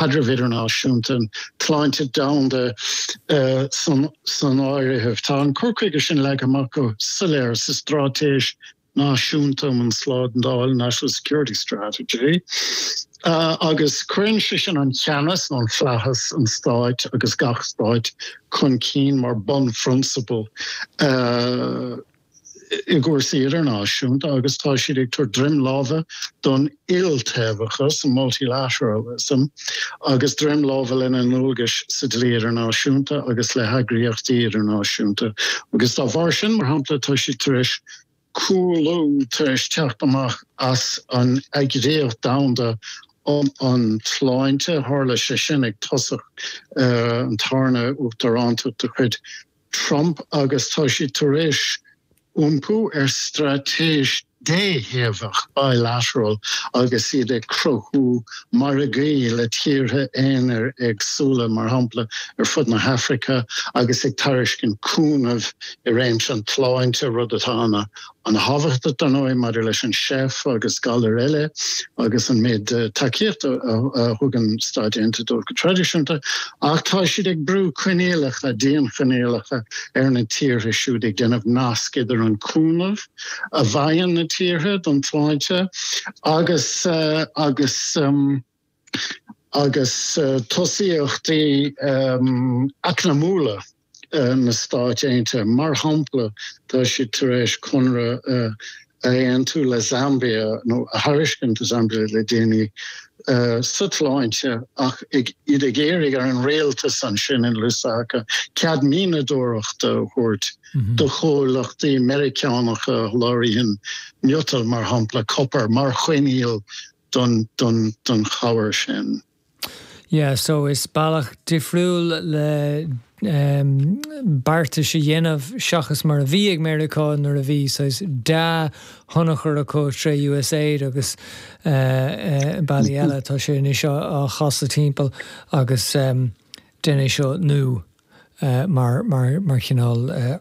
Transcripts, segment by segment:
caidrimh idirnáisiúnta, sláinte dhomhanda san áirithe. Tá an cur chuige sin leagtha amach go soiléir sa Straitéis Náisiúnta um an tSlándáil, National Security Strategy, agus cuireann sé sin an ceannas nó an flaitheas, an stáit agus gach stáit chun cinn mar bunphrionsabal. i gcúrsaí idirnáisiúnta agus tá siad ag tabhairt droim láimhe don iltaobhachas, multilateralism, agus droim láimhe lena ndualgais sa dlí idirnáisiúnta agus le heagraíochtaí idirnáisiúnta agus dá bharr sin, mar shampla, tá siad tar éis cúlú, tar éis teacht amach as an Eagraíocht Dhomhanda um an tSláinte. Tharla sé sin ag tosach an tarna uachtaránacht de chuid Trump agus tá siad tar éis iompú ar straitéis déthaobhach, bilateral, agus iad ag cruthú margaí le tíortha aonair éagsúla, mar shampla ar fud na hAfraice, agus ag tairiscint cúnaimh i réimse an tsláinte, rud atá ana An thábhachtach, dar ndóigh, maidir leis an SEIF agus galair eile agus an méid tacaíochta a thugann na Stáit Aontaithe dóibh go traidisiúnta, ach tá siad ag brú coinníollacha, dianchoinníollacha, ar na tíortha siúd, ag déanamh nasc idir an cúnamh a fhaigheann na tíortha don tsláinte agus agus tosaíochtaí eacnamaíochta na Stáit Aontaithe. Mar shampla, tá siad tar éis conradh a aontú le Zambia, nó a thairiscint do Zambia le déanaí, sa tsláinte, ach iad ag iarraidh ar an rialtas ansin in Lusaka cead mianadóireachta a thabhairt do chomhlachtaí Meiriceánacha le haghaidh miotal, mar shampla copar, mar choinníoll don chabhair sin. Yeah so is bealach difriúil le beartais a dhéanamh seachas mar a bhí ag Meiriceá nuair a bhí saghas dea-thionchar acu tré USAID agus bealaí eile, tá sé anois á chasadh timpeall agus déanfaidh tú seo nó mar chineál.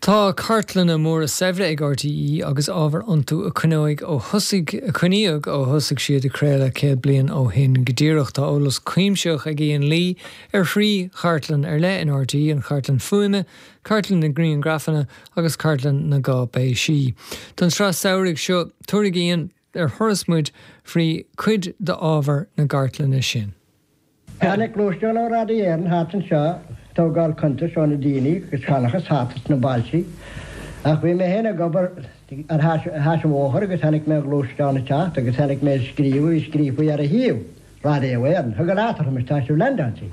Tá cartlanna móra saibhre ag RTÉ agus ábhar iontu a coinneoidh ó thosaigh, a coinníodh ó thosaigh siad ag craoladh céad bliain ó shin go díreach. Tá eolas cuimsitheach ag Ian Lee ar thrí chartlann ar leith in RTÉ, an chartlann fuaime, cartlann na ngriangrafanna agus cartlann na gcáipéisí. Don tsraith samhraidh seo, tabharfaidh Ian. ar thuras muid fríd cuid d'ábhar na cartlainne sin. Tháinig gluaisteán ó Radio Éireann thart anseo ag tógáil cuntais ó na daoine agus seanchas thart sna bailtí. Ach bhí mé féin ag obair ar ais an bhóthair agus chonaic mé an gluaisteán ag teacht agus chonaic mé an scríobh a bhí scríofaí ar a thaobh, Radio Éireann. Thug leat, arsa mise, tá sibh leaindeáilte.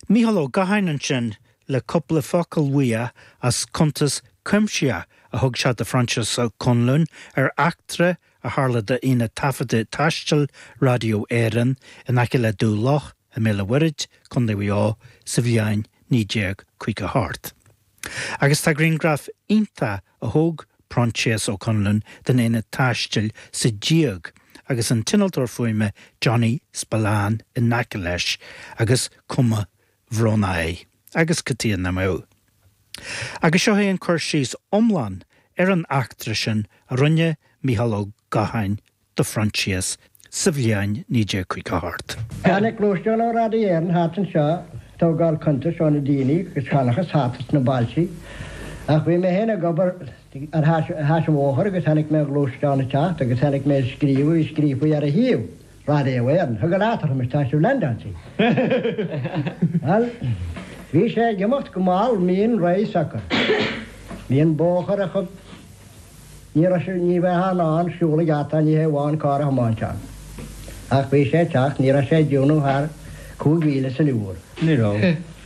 Mícheál Ó Gacháin ansin le cupla focal uaidh as cuntas cuimsitheach a thug sé do Phroinsias Ó Conluain ar eachtra a tharla d'aonad taifeadta taistil Raidió Éireann in aice le Dumha Locha i mBéal an Mhuirthid, Co. Mhaigh Eo, sa bhliain 1958. Agus tá grianghraf iontach a thóg Proinsias Ó Conluain den aonad taistil sa díog agus an t-innealtóir fuaime Johnny Spillane in aice leis agus cuma bhrónach air agus cad chuige nach mbeadh. Agus seo é an cur síos iomlán ar an eachtra sin a rinne Micheál Ó Gacháin do Phroinsias sa bhliain 1958. Tháinig gluaisteán ó Radio Éireann thart anseo ag tógáil cuntais ó na daoine agus seanchas thart sna bailtí. Ach bhí mé féin ag obair ar ais an bhóthair agus chonaic mé an gluaisteán ag teacht agus chonaic mé an scríobh a bhí scríofa ar a thaobh. Raidió Éireann. Thug leat, arsa mise, tá sibh leaindeáilte. Bhí sé ag imeacht go mall mín réidh socair. Bhí an bóthar an-chúng. Ní raibh sé ní bheifeá in ann siúl i gceart air ní hé amháin carr a thiomáint ann. Ach bhí sé ag teacht ní raibh sé ag déanamh thar chúig mhíle san uair. Ní raibh.